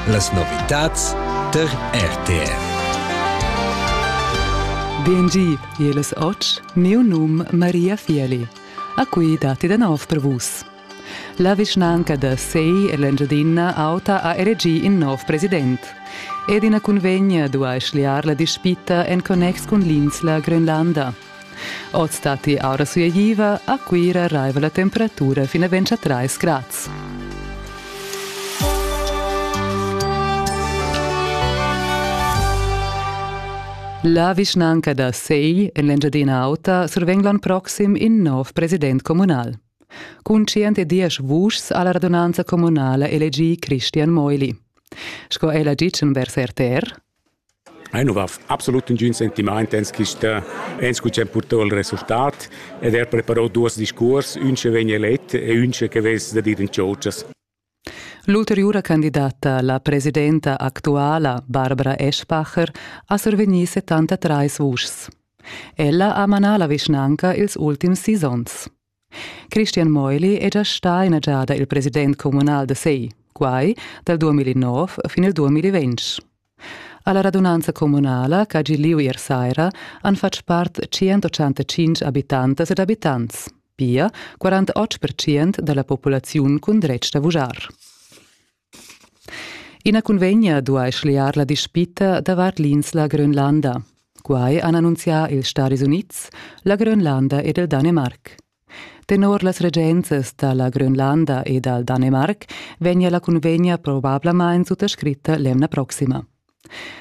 Las novitads tar RTR. BNG, jeles och, miu num Maria Fieli. A cui dati da nov per vus. La vischnanca da Sei e l'Engiadina Auta ha elegì in nov president. Ed ina cunvegna duai schliar la dispita en connex cun l'insla Grönlanda. Oz datti aura sueiva, a Cuira raiva la temperatura fin a 23 grads. La vischnanca da Segl en l'Engiadina Auta survegn l'ann proxim in nov president communal. Cun 110 vuschs ha la radunanza communala elegì Christian Meuli. Sco ella ditg vers RTR, Ei nu va absolut nagün sentimaint ens quista ens cu c'è purtà il resultat ed er preparò duos discuors, ün che vegn elet e ün che vess da dir in tschotschas. L'ulteriura candidata, la presidenta actuala Barbara Eschbacher, ha survegnì 73 vuschs. Ella ha manà la vischnanca ils ultims sis onns. Christian Meuli è già stà ina giada il president communal da Sei, quai dal 2009 fin il 2020. Alla radunanza communala ch'ha gi lieu ier saira han fatg part 185 abitantas ed abitants, pia 48% da la populaziun cun dretg da vujar. Ina cunvegna duai schliar la dispita davart l'insla Grönlanda. Quai han annunzià ils Stadis Unids, la Grönlanda ed il Danemarc. Tenor las regenzas da la Grönlanda e dal Danemarc vegnia la cunvegna probablamain suttascritta l'emna proxima.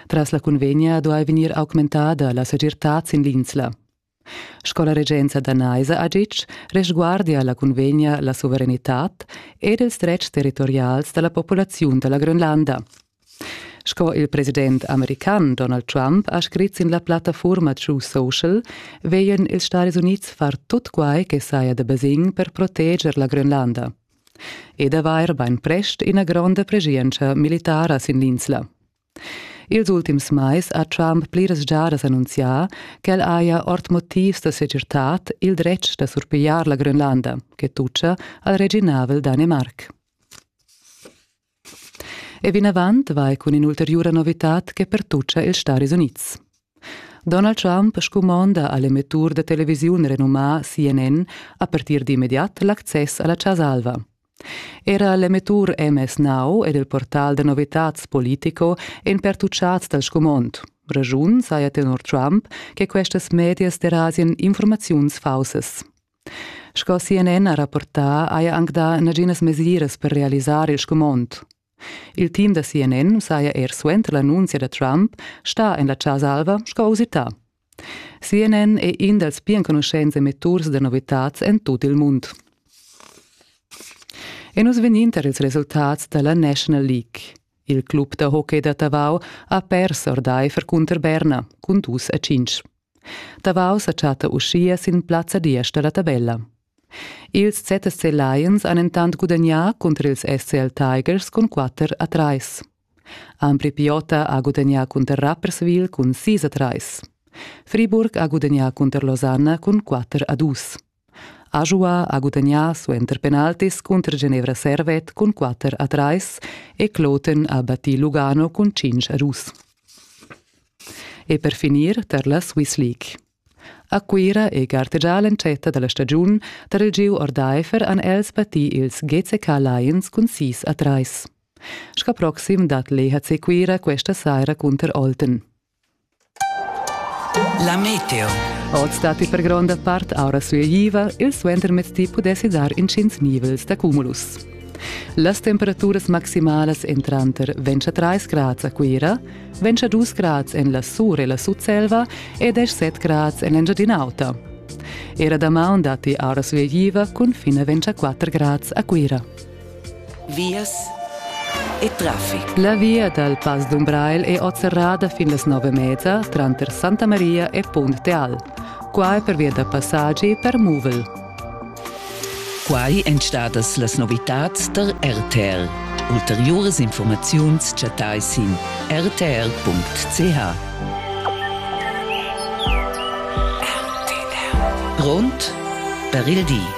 Tras la cunvegna duai vegnir augmentada la segirtad sin l'insla. Sco la regenza danaisa ha ditg, resguardia la cunvegna la suverenitad ed ils dretgs territorials da la populaziun da la Grönlanda. Sco il president american Donald Trump ha scrit sin la plattafurma True Social, veglian ils Stadis Unids far tut quai che saja da basegn per proteger la Grönlanda ed avair bainprest ina gronda preschientscha militara sin l'insla. Ils ultims mais ha Trump pliras giadas annunzià ch'el haja ord motivs da segirtad il dretg da surpigliar la Grönlanda, che tutscha al reginavel Danemarc. E vinavant vai cun in'ulteriura novitad che pertuccia ils Stati Unids. Donald Trump scumonda a l'emettur da televisiun renumà CNN a partir d'immediat l'access a la Chasa Alva. Era l'emettur MS-Now ed il portal da novitads Politico èn pertuchads dal scumond. Raschun saja tenor Trump che questas medias derasian informaziuns faussas. Sco CNN ha rapportà, haja anc dà naginas mesiras per realisar il scumond. Il team da CNN saja er suenter l'annunzia da Trump stà en la Chasa Alva sco usità. CNN è in dals pli enconuschents emetturs da novitads en tut il mund. E nus vegnin tar ils resultats da la National League. Il club da hockey da Tavau ha pers ordaifer cunter Berna cun dus a cinc. Tavau sa chatta uschia sin plazza diesch da la tabella. Ils ZSC Lions han entant gudagnà cunter ils SCL Tigers cun 4 a 3. Ambri Piota ha gudagnà cunter Rapperswil cun sis a trais. Friburg ha gudagnà cunter Losanna cun quatter a dus. Ajoua ha gudagnà suenter penaltis cunter Genevra Servet cun quatter a trais e Kloten ha battì Lugano cun cinc a dus. E per finir tar la Swiss League. A Cuira è gartegià l'entschatta da la stagiun tar il giu ordaifer han els battì ils GCK Lions cun sis a trais. Sca proxim dat l'EHC Cuira questa saira cunter Olten. La meteo. Oz datti per gronda part aura sueiva, il suentermezdi pudessi dar intgins nivels da cumulus. Las temperaturas maximalas èn tranter 23 grads a Cuira, 22 grads en la Sur e la Sutselva e 17 grads en l'Engiadin'Auta. Era damaun datti aura sueiva cun fin a 24 grads a Cuira. Vias e traffic. La via dal Pass d'Umbrail è oz serrada fin las nove mezza tranter Santa Maria e Punt Teal. Quai per via da passaggi per muvel. Quai èn stadas las novitads da RTL. Ulteriuras informaziuns chattai sin rtl.ch. Grond per il di.